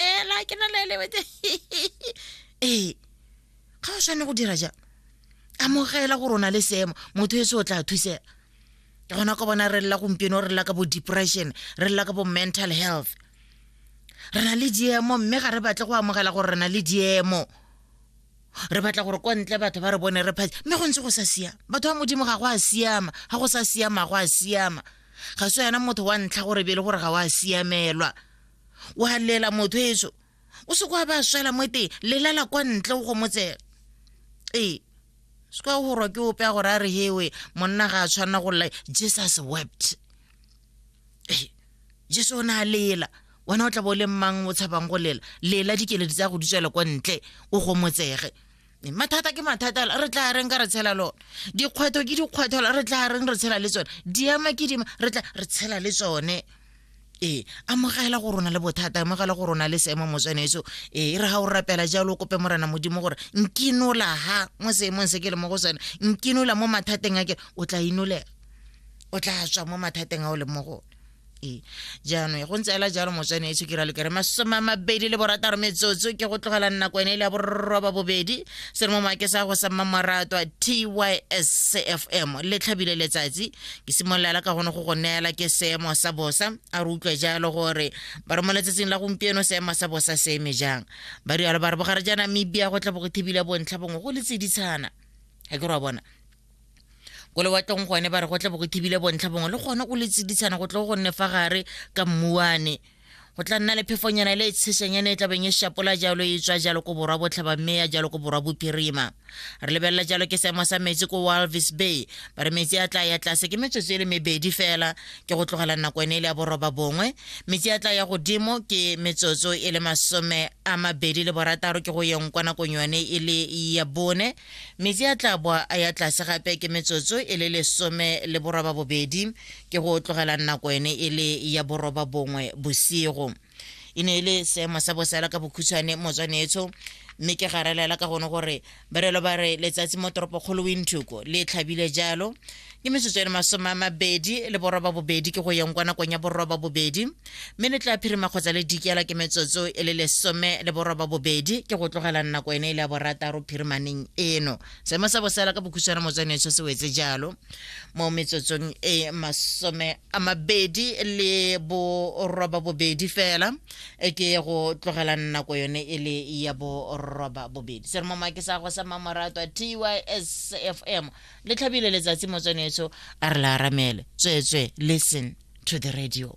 ela ke na le lebete ee ga o tshwane go dira jang amogela gore o na le seemo motho e se o tla thusega ke gona ka bona re lela gompieno re lela ka bo depression re lela ka bo mental health re na le diemo mme ga re batle go amogela gore re na le diemo re batla gore kwa ntle batho ba re bone re phatse mme go ntse go sa siama batho ba modimo ga go a siama ga go sa siama go a siama ga se yona motho wa ntlha gore bele gore ga o a siamelwa wa lela motho eso o se kwa ba swela mo teng lelala kwa ntle go motsela ee se kwa gorwa ke ope a gore a re hewe monna ga a tshwanela go lla jesus wept ee jesu o ne a lela wena o tla bo o le mmang o tshabang go lela lela dikeledi tsa go di tswela kwa ntle o gomotsege mathata ke mathata re tla reng ka re tshela lone dikgwetlho ke dikgwetlho re tla reng re tshela le tsone diema ke dima re tla re tshela le tsone ee amogela go rona le bothata amogela go rona le seemo mo tshwanetso ee re ga o rapela jalo o kope morena modimo gore nkinola ha mo seemong se ke le mo go sone nkinola mo mathateng a ke o tla inolega o tla tswa mo mathateng a o leng mo gone ee jaanong go ntse ela jalo motswane e tshokira lekere masome a mabedi le borataro metsotso ke go tlogela nako ene e le ya borroba bobedi se re mo maake sa go sa mmamorato a tyscfm le tlhabile letsatsi ke simololela ka gone go go neela ke seemo sa bosa a re utlwe jalo gore ba re mo letsatsing la gompieno seemo sa bosa se eme jang ba rialo ba re bogare ja namibia go tla bo go thibile bontlha bongwe go le tseditshana ga ke re wa bona ko lewatleng gone ba re go tle bo go thibile bontlha bongwe le gone go le tsiditshana go tle go nne fa gare ka mmuane go tla nna le phefonyana le e tshesanyana e tlabeng e shapola jalo e tswa jalo ko borwa botlhaba mme ya jalo ko borwa bophirima re lebelela jalo ke seemo sa metsi ko walvis bay ba re metsi a tla ya tlase ke metsotso e le mebedi fela ke go tlogela nako ene e le ya boroba bongwe metsi a tla ya godimo ke metsotso e le masome a mabedi le borataro ke go yeng kwa nakong yone e le ya bone Metsi a tla boa a ya tlase gape ke metsotso e le lesome le boroba bobedi, ke go tlogelang nako ene e le ya boroba bongwe bosigo. E ne e le seemo sa bosela ka bokhutshwane motswanetsho, mme ke garalela ka gone gore barelo ba re letsatsi mo toropokgolo Windhoek le tlhabile jalo, ke metsotso eno masome a mabedi le boroba bobedi ke go yeng kwa nakong ya boroba bobedi mme le tla phirima kgotsa le dikela ke metsotso e le lesome le boroba bobedi ke go tlogela nako ene e le ya borataro phirimaneng eno seemo sa bosela ka bokhutshwana motswaneso se wetse jalo mo metsotsong e masome a mabedi le boroba bobedi fela e ke go tlogela nako yone e le ya boroba bobedi se re mo make sa go sa mamoratwa tysfm le tlhabile letsatsi motsweneso a re la aramele tsweetswe listen to the radio